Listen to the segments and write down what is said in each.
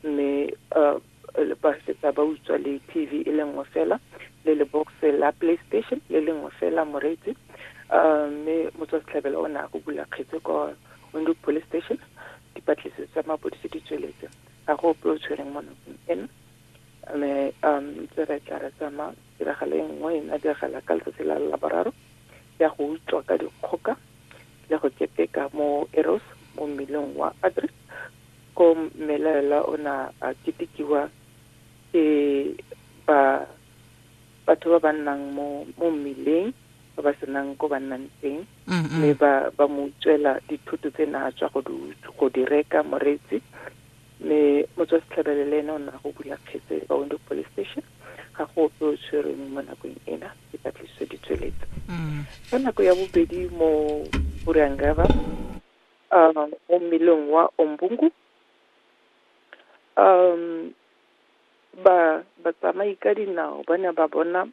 mme uh, ba fetsa ba utswa le tv e le nngwe fela le le box la playstation le le nngwe fela moreetsi um mme motswasetlhabela o ne a go bula kgetse ko windhoek police station dipatlisiso tsa mapodisi di tsweletse ga go ope o tshwereng mo nakong eno mme um ntse re tla re tsamaya tiragalo e nngwe e na diragala ka letsatsi la laboraro ya go utswa ka dikgoka le go keteka mo eros mo mmileng wa adri Kom mmelaelwa o ne a ketekiwa ke ba batho ba ba nnang mo mo mmileng ba ba senang ko ba nnang teng mme ba ba mo utswela dithoto tse na tswa go di go di reka moreetsi mme motswa setlhabele le ene o na go bula kgetse ba window police station ga go ope o tshwereng mo nakong ena ke patlisiso di tsweletse ka nako ya bobedi mo burang river um, mo mmeleng wa ombungu um ba batsamai ka dinao ba ne ba bona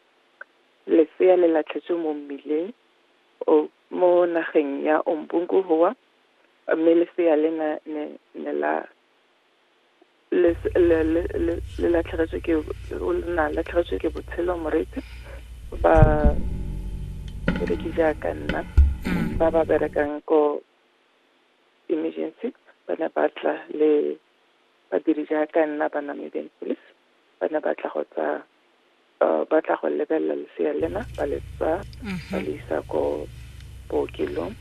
lesea le latlhetswe mo mmileng mo nageng ya ombungu gowa mme lesea le ne la le le le le le latlhegetswe ke o na latlhegetswe ke botshelo moreetsi ba bereki jaaka nna ba ba berekang ko emergency ba ne ba tla le badiri jaaka nna ba namedeng police ba ne ba tla go tsa uh, ba tla go lebelela lesea lena ba le tsa ba le isa ko bookelong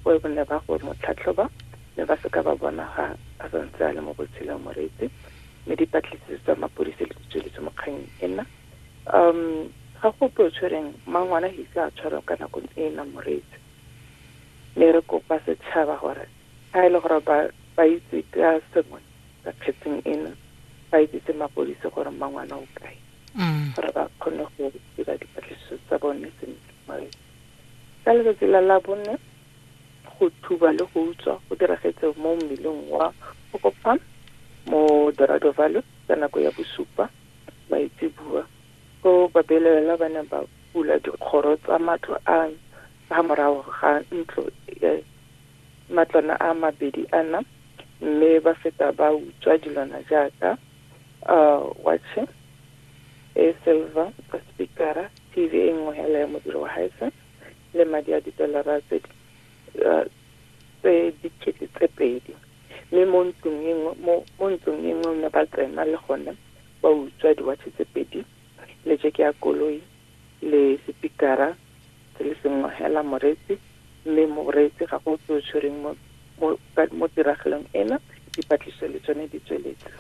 go e bone ba go mo tlhatlhoba mme ba seka ba bona ga a sa ntse a le mo botshelong moreetsi mme dipatlisiso tsa mapodisi le ditsweletse mo kganyeng ena um ga go ope o tshwereng mangwana ga ise a tshwarwa ka nakong e e nang moreetsi mme re kopa setšhaba gore ga e le gore ba ba itse ka sengwe ka kgetseng ena ba itsise mapodisi gore mmangwana o kae mm. gore ba kgone go dira dipatlisiso tsa bone sentle mare ka letsatsi la labone go thuba le go utswa go diragetse mo mmeleng wa okopam mo dorado valley ka nako ya bosupa maitsebua go babelelela ba ne ba bula dikgoro tsa matlo a ga morago ga ntlo e matlwana a mabedi ana mme ba feta ba utswa dilwana jaaka uh, watching e silver ka speakera tv e nngwe hela ya modiro wa haese le madi a ditolara tse uh, tse dikete tse pedi mme mo ntlong e nngwe mo ntlong e nngwe ne ba tsena le gone ba utswa diwatšhe tse pedi le jeke ya koloi le sepikara se le sengwe hela moreetsi mme moreetsi ga go tse o tshwereng mo mo tiragalong ena dipatlisiso le tsone di tsweletse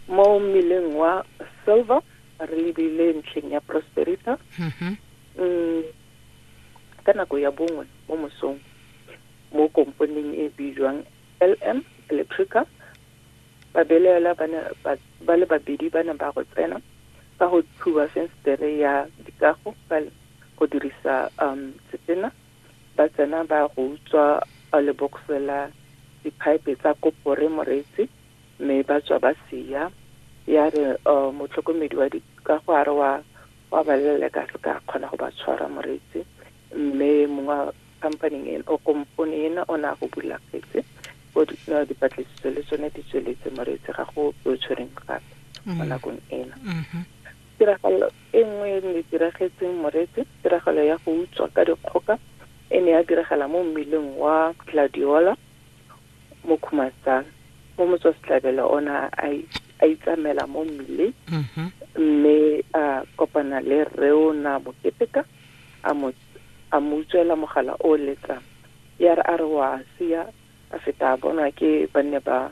mo mmileng wa silver re lebile ntlheng ya prosperita mm-hmm. mm, ka nako ya bongwe mo mosong mo komponeng e bijwang LM, Electrica, babelaelwa ba ne ba ba le babedi ba ne ba go tsena ka go thuba fensetere ya dikago ka go dirisa um setena ba tsena ba go utswa uh, lebokse la diphaepe tsa kopore moreetsi mme ba tswa ba sia ya re uh, motlhokomedi wa dikago a re wa wa ba leleka se ka kgona go ba tshwara moreetsi mme mong wa company ena o kompone ena o ne a go bula kgetse o no dipatlisiso le tsone di tsweletse moreetse ga go o tshwereng gape mo mm. nakong ena mm-hmm. tiragalo e nngwe e ne diragetseng moreetse tiragalo ya go utswa ka dikgoka e ne ya diragala mo mmileng wa gladiola mo khumatsang mo motswasetlabela o ne a itsamela mo mmileng mm-hmm. mme a kopana le reona moketeka a mo a mo utswela mogala o letsang ya re a re wa sia a feta a bonwa ke banne ba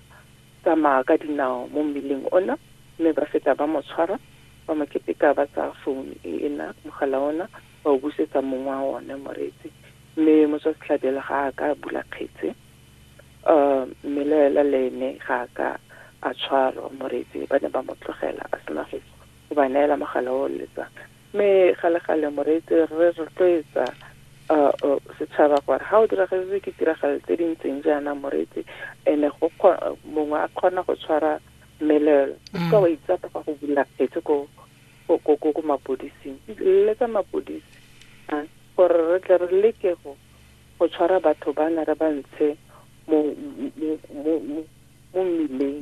tsamaya ka dinao mo mmileng ona mme ba feta ba mo tshwara ba mo keteka ba tsaya founu e ena mogala ona ba o busetsa mong wa one moreetsi mme motswa setlhabela ga a ka bula kgetse um mme le ela le ene ga a ka a tshwarwa moreetsi ba ne ba mo tlogela a sena go ba neela mogala o letsang Mme gale-gale Moreetsi re re rotloetsa setšhaba gore ga o diragaditswe ke tiragalo tse di ntseng jaana Moreetsi ene go mongwe a kgona go tshwara mmelelo o mm. ka wa itsapa ga go bula kgetse ko ko ko mapodising letsa mapodisi gore re tle re leke go go tshwara batho ba na re ba ntshe mo mo mo mo mmileng